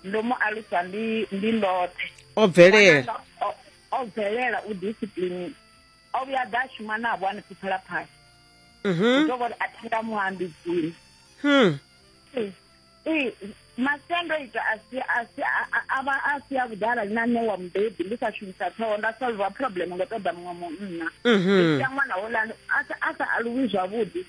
ndo mu alusa ndi ndi ndoṱhe o bvelela o bvelela u discipline o vhuya a ḓa a shuma navho a ni pfuphela phasi mhm. ndo vhori a thi nga mu ambidzini hmm. masiandoitwa avha a si a vhuḓi arali na ṋewa mubebi ndi sa shumisa ṱhoho nda solva problem ngo ṱoḓa muṅwe munna mhm. ndi sia ṅwana holani a sa aluwi zwavhuḓi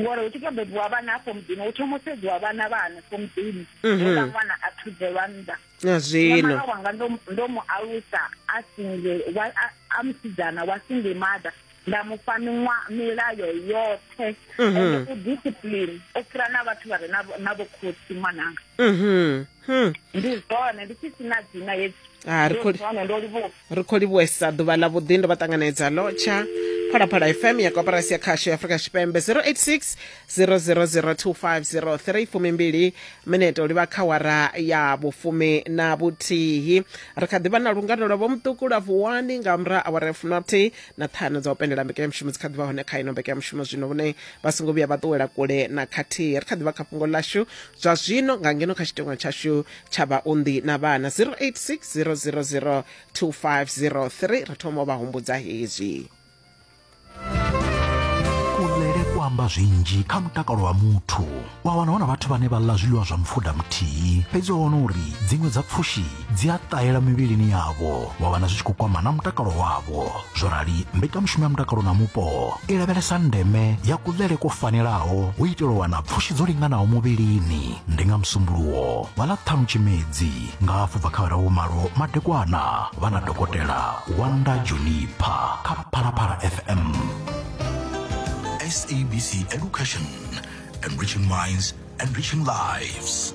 ngori hu tshi to bebiwa vhana afho muḓini hu thoma u sedziwa vhana vha hanefho muḓini mhm. hela ṅwana a thuzelwa nnḓa na zwino wanga ndo mu alusa a single a musidzana wa single mother nda mu fha milayo yoṱhe mhm. ende u discipline u fhira na vhathu vha re na vhokhotsi ṅwananga mhm hmm. ndi zwone ndi tshi sina dzina hedzi Ah, ri khou- Ndi zwone ndo livhuwa ri khou livhuwesa ḓuvha ḽa vhuḓi ndo vha ṱanganedza lotsha phalaphala fm ya koporasi ya khasho ya afrika tshipembe 086 0002503 fumimbili minete u livha kha wara ya vhufumi na vhuthihi ri kha ḓivha na lungano lwa vhomuṱuku lwa vuwani nga murahu awara ya fumi na vhuthihi na ṱhanu dza u penndela mbekanyamushumo dzi kha ḓivha hone kha ino mbekanyamushumo zwino vhone vha songo vhuya vha ṱuwela kule na khathihi ri kha ḓivha kha fhungo ḽashu zwa zwino nga ngeno kha tshitengo tshashu tsha vhaunḓi na vhana 086 0002503 ri thoma u vha humbudza hezwi kulele ku amba zwinzhi kha mutakalo wa muthu wa wana hu na vhathu vhane vha ḽa zwiḽiwa zwa mupfuda muthihi fhedzi wa wana uri dziṅwe dza pfushi dzi a ṱahela mivhilini yavho wa vhana zwi tshi khou kwama na mutakalo wavho zwo rali mbekanyamushumo ya mutakalo na mupo i lavhelesa ndeme ya kuḽele kwo fanelaho u itela u wana pfushi dzo linganaho muvhilini ndi nga musumbuluwo vha ḽa ṱhanu tshimedzi nga hafhu bva kha vharahu malo madekwana vha na dokotela wanda junipa kha phalaphala fm sabc education enriching minds enriching lives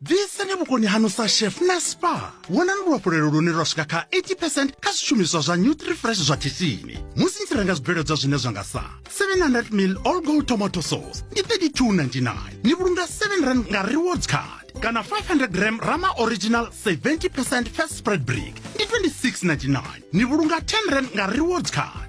bviseni vhukoni hanu sa chef na spa wonani luhafhulelo lune lwa swika kha 80 percent kha zwishumiswa zwa nutrifresh zwa khishini musi ni tshi renga zwibveledzwa zwine zwa nga sa 700 mil all gold tomato sauce ndi 3299 ni vhulunga 7 rand nga rewards card kana 500 gram rama original 70 percent fat spread brick ndi 2699 ni vhulunga 10 rand nga rewards card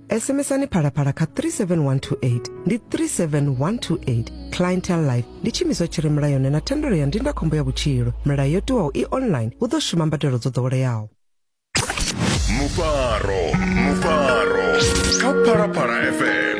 SMSani Phalaphala kha 37128 ndi 37128 Clientele Life ndi tshiimiswa tshi re mulayoni na thendelo ya ndindakhombo ya vhutshilo. Milayo yo tiwaho i online hu ḓo shuma mbadelo dzo ḓoweleaho. mufaro mufaro kha phalaphala fm